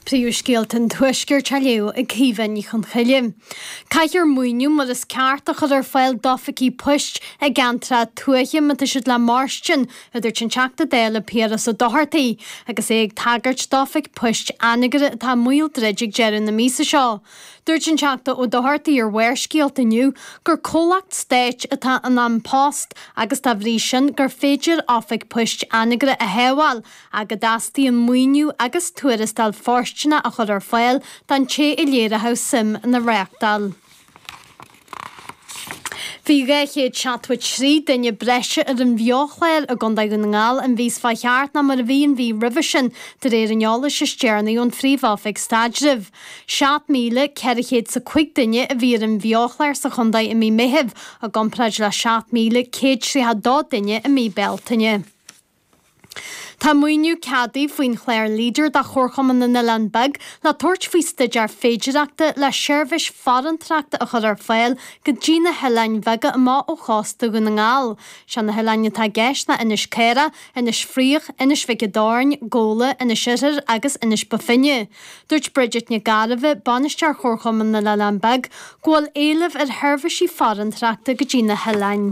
Príomhscéalta an Tuaiscirt á léamh ag Caoimhe Ní Chonchoille. Caithfear maoiniú mar is ceart a chur ar fáil d'oifigí poist i gceantracha tuaithe má tá siad le mairstin, a dúirt an Teachta Dála Piaras Ó Dochartaigh agus é ag tagairt d'Oifig Poist Anagaire atá i mbaol druid ag deireadh na míosa seo. Dúirt an Teachta Ó Dochartaigh ar Bharrscéalta inniu gur comhlacht stáit atá in An Post agus dá bhrí sin gur féidir Oifig Poist Anagaire a shábháil ach go dteastaíonn maoiniú agus tuarastal fóirsteanach a chur ar fáil don té a léireofadh suim ina reáchtáil. Bhí 273 duine breise ar an bheo-chlár i gContae Dhún na nGall an mhí seo chuaigh thart ná mar a bhí an mhí roimhe sin, de réir an eolais is deireanaí ón Phríomh-Oifig Staidrimh. 7,400 's 5 duine a bhí ar an bheo-chlár sa chontae i mí Meithimh, i gcomparáid le 7,132 duine i mí Bealtaine. Tá maoiniú ceadaithe faoin chlár LEADER do Chomharchumann na nOileán Beag le tabhairt faoi staidéar féidireachta le seirbhís farantrachta a chur ar fáil go dtí na hoileáin bheaga amuigh ó chósta Dhún na nGall. Is iad na hoileáin atá i gceist ná Inis Caorach, Inis Fraoich, Inis Mhic an Doirn, Gabhla, Inis Oirthir agus Inis Bó Finne. Dúirt Bridget Nic Gairbheith, Bainisteoir Chomharchumann na nOileán Beag, go bhfuil éileamh ar sheirbhísí farantrachta go dtí na hoileáin.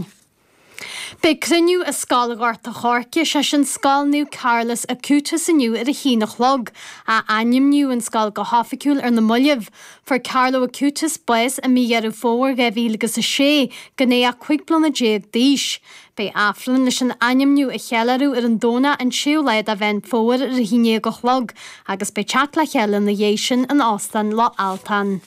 Beidh cruinniú i Scoil Ghort a' Choirce, is é sin Scoil Naomh Carlos Acutis inniu ar a haon a chlog. Athainmníodh an scoil go hoifigiúil ar na mallaibh. Fuair Carlo Acutis bás i mí Dheireadh Fómhair 2006, gan é ach cúig bliana déag d'aois. Beidh Aifreann leis an ainmniú a cheiliúradh ar an Domhnach an séú lá de Mheán Fómhair ar a haon déag a chlog, agus beidh teacht le chéile ina dhiaidh sin in Óstán Loch Altan.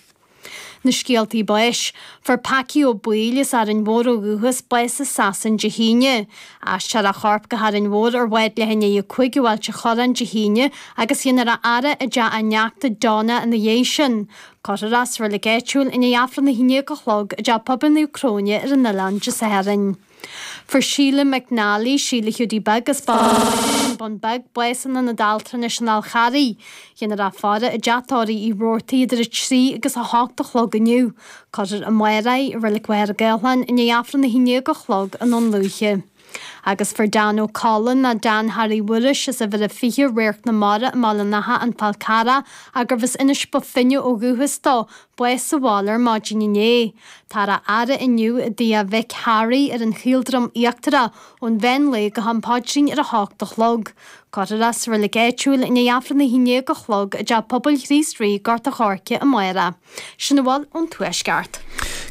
Na scéaltaí báis. Fuair Packie Ó Baoill as Árainn Mhór ó dhúchas bás i Sasain Dé hAoine. Aistreofar a chorp go hÁrainn Mhór ar bhád leath i ndiaidh a 5 ó Ailt an Chorráin Dé hAoine agus dhéanfar a fhaire i dteach a neachta Donna ina dhiaidh sin. Cuirfear é sa reilig áitiúil i ndiaidh Aifreann a 11 a chlog i dTeach Pobail Naomh Cróine ar an oileán Dé Sathairn. Fuair Síle McNally, Síle Hiúdaí Beag, as Baile Mhic Airt An Bun Beag, bás in Aonad Altranais an Fháil Charraigh. Dhéanfar a faire i dTeach Tórraimh Uí Robhartaigh idir 3 agus 8 a chlog inniu. Cuirfear í amárach i Reilig Mhachaire Gathlán i ndiaidh Aifreann a haon déag a chlog i nDún Lúiche. Agus fuair Dan Ó Colla, nó Dan Harry Mhuiris, as Uimhir a 20, Radharc na Mara i mBaile an Átha, An Fál Carrach, arbh as Inis Bó Finne ó dhúchas dó. bás sa bhaile ar maidin inné. Táthar á fhaire inniu i dtigh a mhic Harry ar an Chaoldroim Íochtarach ón mheán lae go ham paidrín ar a hocht a chlog. Cuirfear é sa reilig áitiúil i ndiaidh Aifreann a haon déag a chlog i dTeach Pobail Chríost Rí, Gort a' Choirce, amárach. Sin a bhfuil ón Tuaisceart.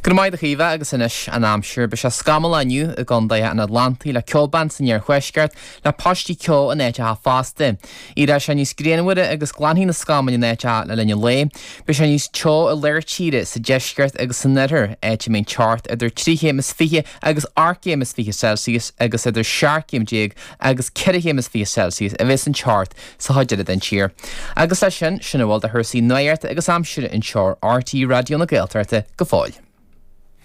Go raibh maith agat a Chaoimhe agus anois an aimsir. Beidh sé scamallach inniu i gcontaetha an Atlantaigh le ceobhrán san iarthuaisceart le paistí ceo in áiteacha fosta. Éireoidh sé níos grianmhaire agus glanfaidh na scamaill in áiteacha le linn an lae. Beidh sé níos teo i lár tíre, sa deisceart agus san oirthear, áit a mbeidh an teocht idir trí chéim is fiche agus ocht gcéim is fiche Celsius agus idir seacht gcéim déag agus ceithre chéim is fiche Celsius a bhéas an teocht sa chuid eile den tír. Agus leis sin, sin a bhfuil de chúrsaí nuachta agus aimsire anseo ar RTÉ Raidió na Gaeltachta go fóill.